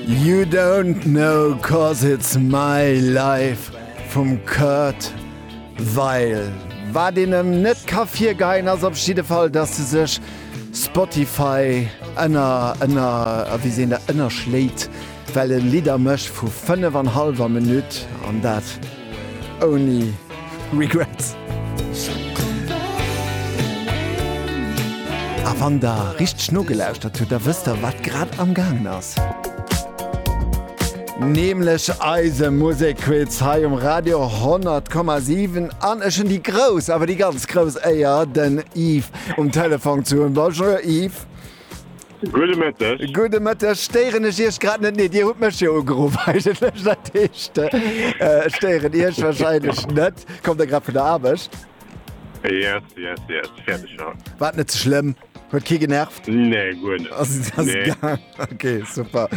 You don't know cause it's my life vum Kurt Weill. Wat een em net ka virgeheien ass op jidde Fall, datt e sech Spotify ënner ënner a wéi seent der ënnerschléit, well e Lidder mécht vu 5 an hallwer Minutt an dat, Ouni Regrets. A wann der richteg nogelauschtert hutt, da wësst der, wat grad amgaangen ass. Nämlech eise Musekquiz hei um Radio 100,7. An ech hunn déi grouss, awer déi ganz grouss Éier, den Yves um Telefon ze hunn. Bonjour Yves. Gudde Mëtteg. Gudde Mëtteg. Stéieren ech Iech grad net? Nee, Dir hutt mech jo ugeruff eigentlech. Dat heescht, ech stéieren Iech warscheinlech net. Kommt Der grad vun der Aarbecht? Yes, yes, yes. Fäerdeg scho. Wat net ze schlëmm. Huet kee genervt? Nee, guer net. Ass ass gaang? Nee. Ok, super.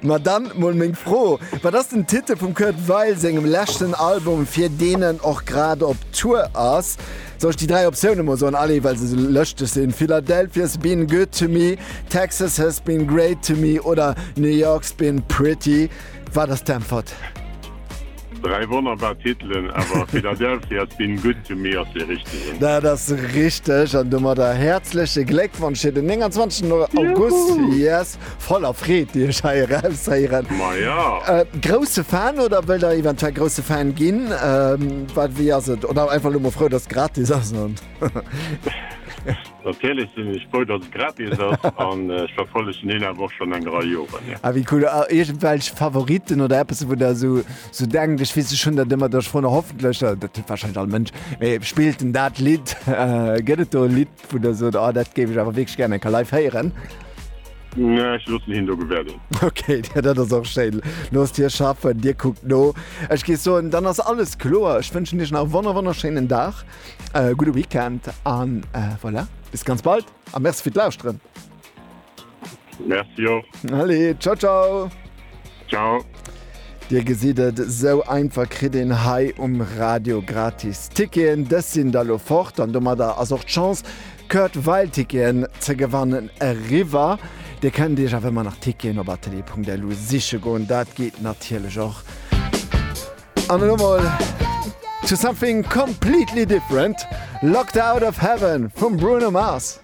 Ma dann mol meng Fro, Wat ass den Titel vum Kurt Weill sengem leschten Album, fir deen en och grad op Tour ass? Soll ech déi dräi Optioune mol soen, allez, well se esou lëschteg sinn, Philadelphia's been good to me, Texas has been great to me oder New York's been pretty. Wat ass d'Äntwert? Dräi wonnerbar Titelen, awer Philadelphia's been good to me ass dee richtegen. Dat ass richteg an domadder häerzleche Gléckwonsch fir den 29 August. Juhu! Yes! Voller Freed déi ech hei eraushéieren. Maja! Grousse Fan oder wëll der eventuell grousse Fan ginn? Wat wéi ass et? Oder einfach lo mol frou dass et gratis ass an. Natierlech sinn ech frou dass et gratis ass an ech verfollegen een awer och schonn eng Rei Joren jo. Ah wéi cool! A iergendwelch Favoritten oder eppes wou der esou sou denkt? Ech weess ech hunn dat ëmmer, da ech froen hoffentlech, dat huet warscheinlech all Mënsch, mee spillt en dat Lidd? Gëtt et do e Lidd? Wou der sot, oh dat géif ech awer wierklech gären eng Kéier live héieren. Nee, ech loossen hien do gewäerden. Okay, dat ass och schéin. Loosst hie schaffen, dir kuckt no. Ech géif soen, dann ass alles kloer. Ech wënschen iech nach e wonner wonnerschéinen Dag, e gudde Weekend an voilà, bis ganz bald a Merci fir d'Lauschteren. Merci och. Allez, ciao ciao. Ciao. Dir gesitt et, esou einfach kritt een hei um Radio gratis Ticketen. Dës sinn da lo fort an domadder ass och d'Chance, Kurt Weill Ticketen ze gewannen, eriwwer. Dir kënnt Iech awer ëmmer nach Ticketen op atelier.lu siche goen, dat geet natierlech och. An elo mol to something completely different, Locked Out of Heaven vum Bruno Mars.